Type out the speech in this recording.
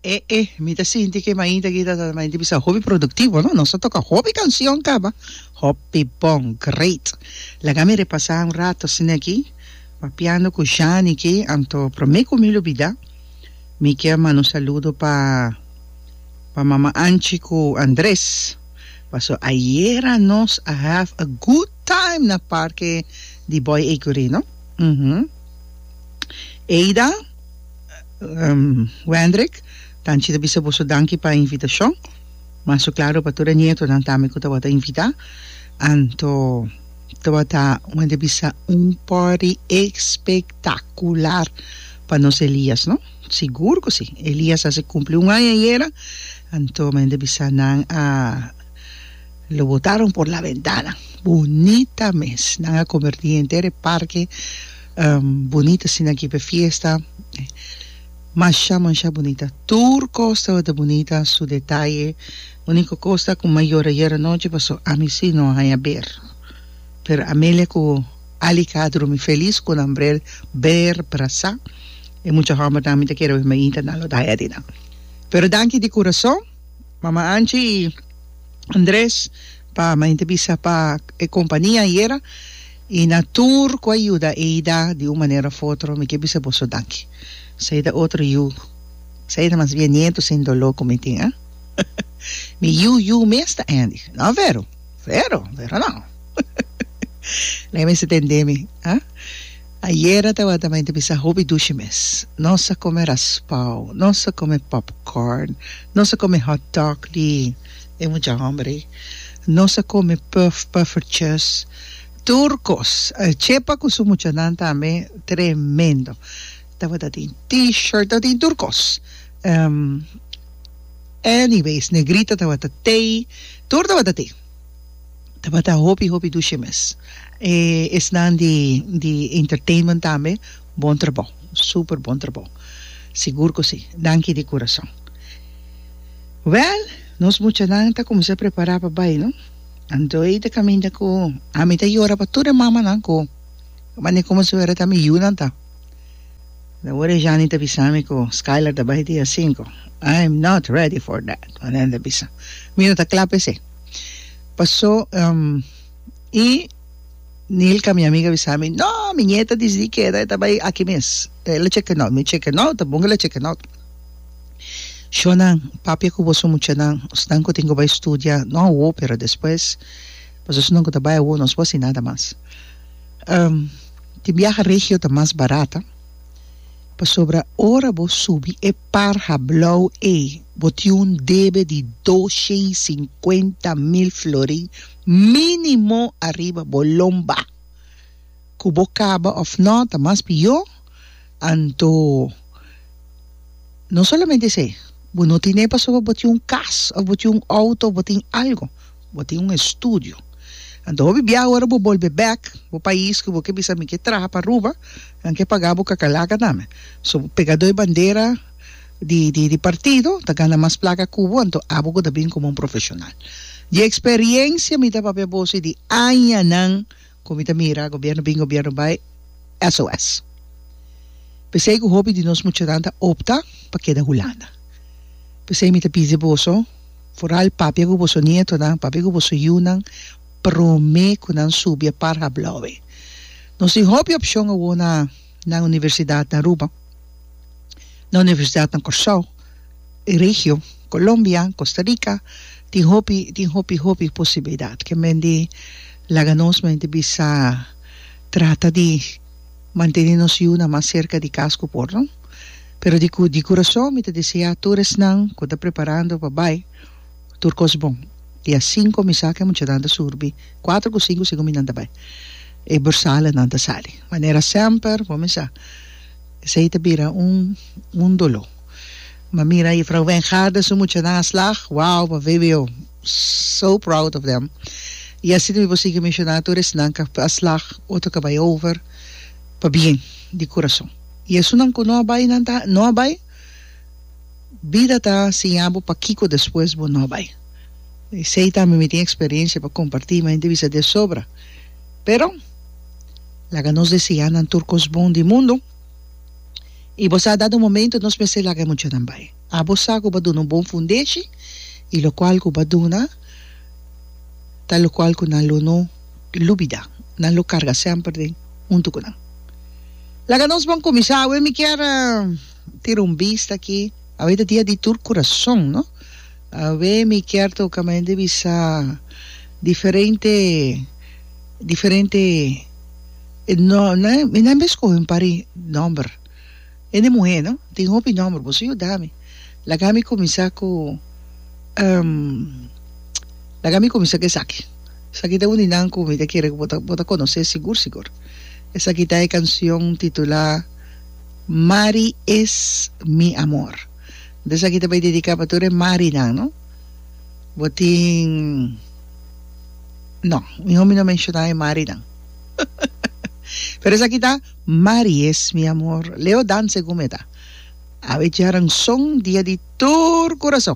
E e mi ta sinti ke mainta aki ta ta mainta bisa hopi produktivo no nos ta toka hopi kansion kaba hopi bon great laga mi repasa un rato asina aki papiando ku Shani aki anto prome ku mi lo bida mi kier manda un saludo pa pa mama Anchi ku Andres paso ayera nos a have a good time na parke di Boy Ecury no uhumm Ada Wendrick, Tanchi ta bisa boso danki pa e invitashon. Maso klaro pa tur e nietonan tambe ku tabata invitá. Anto tabata un hende bisa un pòrdi espektakular pa nos Elias, no? Sigur ku si. Elias a hasi kumpli un aña ayera, anto mi hende bisa nan a lo botaron por la ventana. Bunita mes. Nan a konvertí henter e parke. Bunita asina aki p'e fiesta. Masha masha bunita. Tur kos tabata bunita su detaye. Uniko kos ta ku m'a yora yera nochi paso ami si no a haña ber. Pero Amelia ku Alica a drumi felis ku nan brel ber brasa. E mucha hòmbernan mi ta kere bai mainta nan lo daña di nan. Pero danki di kurason Mama Anchi i Andres pa mainta bisa pa e kompania ayera. I na tur ku a yuda Eida di un manera of otro mi ke bisa boso danki. Esei ta otro yu. Esei ta mas bien nieto sin doló ku mi tin, eh. Mi yu yu mes ta Andy. No Vero. Vero, Vero no. Lei mester tendé mi, ah. Ayera tabata mi ta bisa hopi dushi mes. Nos a kome raspao, nos a kome popcorn, nos a kome hotdog di. E mucha homber ey nos a come puff puffertjes tur cos chepa cu su muchanan tambe tremendo tabata tin t-shirt tabata tin tur cos anyways negrita tabata tey tur tabata tin tabata hopi hopi dushi mes e esnan di di entertainment tambe Bon trabou, super bon trabou. Sigur cu si. Danki di curason. Well, nos muchanan ta cuminsa prepara pa bay, no. Antoey ta caminda cu, ami ta yora pa tur e mamanan cu, mane como su era ta mi yunan ta. Lo ora e Jani ta bisa mi cu Skyler ta bay dia cinco. I am not ready for that, Manuel ta bisa. Mi no ta cla pa esey. Paso, um, y. Nilka mi amiga bisa mi no mi niet a disidi keda e ta bai aki mes el a cheken out mi cheken out ta bon ke el a cheken out shonan papia ku boso muchanan osnan ku tin ku bai studia no awo pero despues paso esnan ku ta bai awo nos bo hasi nada mas tin biaha regio ta mas barata pasobra ora bo subi e par hablou ei bo tin un debe di doshen i sinkuenta mil florin Minimo ariba bo lomba. Cu bo caba of no ta mas pio, anto no solamente esey, bo no tin e pasobra bo tin un cas of bo tin un auto of bo tin algo, bo tin un estudio. Anto hopi bia ora bo bolbe bek bo pais cu bo ke bisa mi ke traha pa Aruba, nan ke paga bo cacalaca tambe. So bo pega doi bandera. di di di partido ta gana mas plaka ku bo anto abo ku ta bin komo un profeshonal di eksperiencia mi ta papia boso i di añanan ku mi ta mira gobièrnu bin gobièrnu bai SOS p'esei ku hopi di nos muchanan ta opta pa keda Hulanda p'esei mi ta pidi boso foral papia ku boso nietonan papia ku boso yunan promé ku nan subi a Parha Blauwe nos tin hopi opshon awor na. na universidad na Aruba, na universidad na Corsou, e regio, Colombia, Costa Rica, tin hopi tin hopi hopi posibilidad ke men di laga nos men di bisa trata di mantene nos yunan mas cerca di cas ku por no pero di ku di corazon mi ta desea tur esnan ku ta preparando pa bai Tur kos bon. I asin kuminsá ku e muchanan ta surbi, kuater ku sinku sigun minan ta bai. E borsalenan ta sali. Manera semper bo mester sa. Esei ta bira un un doló. Bo a mira Juffrouw Wijngaard den su muchanan a slag, wow, bo a vbo so proud of them. I asin tambe bo a sigui menshoná tur esnan ku a slag, otro ku a bai over, pabien, di kurason. I esunnan ku no a bai, nan ta, no a bai? Bida ta siña bo pakico despues bo no bay. Esey tambe mi tin experiencia pa comparti, mi hende bisa desobra. Pero laga nos deseá nan tur cos bon di mundo y bo sa dado momento nos mester laga e muchanan bay. Abo sa cu bo a duna un bon fundeshi y locual cu bo a duna ta locual cu nan lo no lubida, nan lo carga semper den hunto cu nan. Laga nos bon cuminsa awe mi kier. Tira un bista aki. Awe ta dia di tur kurason no. Awe mi kier toka mi hende bisa diferente diferente mi nan bes kohe un par di nomber hende muhe no tin hopi nomber boso yuda mi laga mi kuminsá ku laga mi kuminsá ku esaki esaki ta un di nan ku mi ta kere ku bo ta konosé sigur sigur esaki ta e kanshon titulá. Mari es mi amor. Esaki ta bai dedica pa tur e Mari nan no. Bo tin no miho mi no menciona e Mari nan pero esaki ta Mari es mi amor Leo dan segun mi e ta. Awe djaran son dia di tur curason.